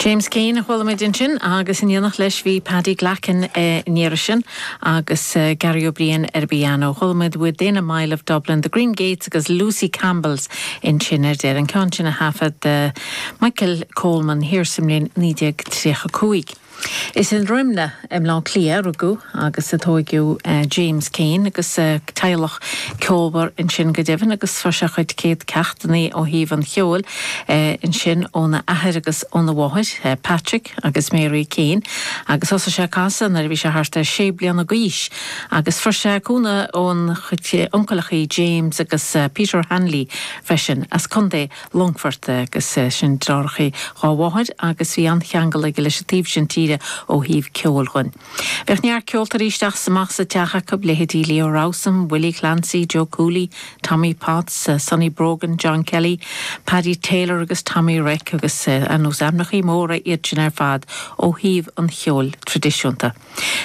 James Keane a chuala muid ansin agus in éineacht leis bhí Paddy Glackin in Iorrais agus Garry Ó Briain ar an bpiano. Chuala muid Within a Mile of Dublin, The Green Gates agus Lucy Campbells ansin ar deireadh, an ceann sin a thaifead Michael Coleman thiar sa mbliain 1935. Is i nDroimneach i mBleá Cliath a rugadh agus a tóigeadh James Keane agus as teaghlach ceolmhar ansin go deimhin agus fuair sé a chuid céad ceachtanna ó thaobh an cheoil ansin óna athair agus óna mháthair, Patrick agus Mary Keane, agus thosaigh sé ag casadh nuair a bhí sé thart ar sé bliana d'aois agus fuair sé cúnamh óna chuid uncaileachaí James agus Peter Hanley freisin as Co. Longfoirt agus sin deartháireacha dhá mháthair agus bhí an-cheangal aige leis an taobh sin tíre ó thaobh ceoil dhuinn. Bhíodh neart ceoltóirí isteach is amach sa teach acu, leithéidí Leo Rowsome, Willie Clancy, Joe Cooley, Tommy Potts, Sonny Brogan, John Kelly, Paddy Taylor agus Tommy Reck agus ar ndóigh ainmneacha móra iad sin ar fad ó thaobh an cheoil traidisiúnta.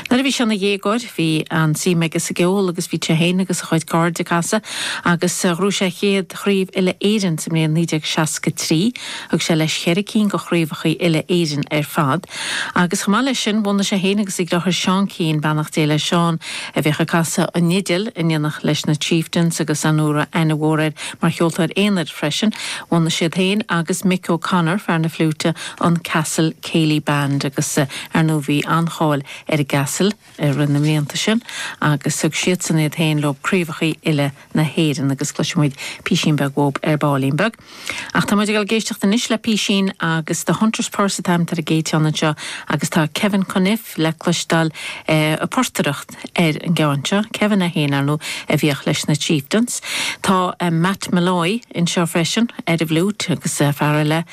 Nuair a bhí sé ina dhéagóir, bhí an-suim aige sa gceol agus bhí sé féin agus a chuid cairde ag casadh agus ghnóthaigh sé a chéad chraobh uile-Éireann sa mbliain 1963. Thug sé leis cheithre cinn de chraobhacha uile-Éireann ar fad agus chomh maith leis sin bhunaigh sé féin agus a dhriotháir Seán Keane, beannacht Dé le Seán, a bhíodh ag casadh an fhidil in éineacht leis na Chieftains agus ar ndóigh a raibh aithne mhór air mar cheoltóir aonair freisin, bhunaigh siad féin agus Mick O'Connor, fear na fliúite, an Castle Céilí Band agus Ar ndóigh bhí an-cháil ar an gCastle i rith na mblianta sin agus thug siadsan iad féin leo craobhacha uile na hÉireann agus cloisimid písín beag uathub ar baillín beag. Ach tá muid ag dul ag éisteacht anois le písín agus The Hunter's Purse atá ainmnithe ar an gcéad fhonn anseo agus tá Kevin Conneff le cloisteáil ag portaireacht ar an gceann seo. Kevin é féin, ar ndóigh, a bhíodh leis na Chieftains. Tá Matt Molloy anseo freisin ar an bhfliúit agus fear eile,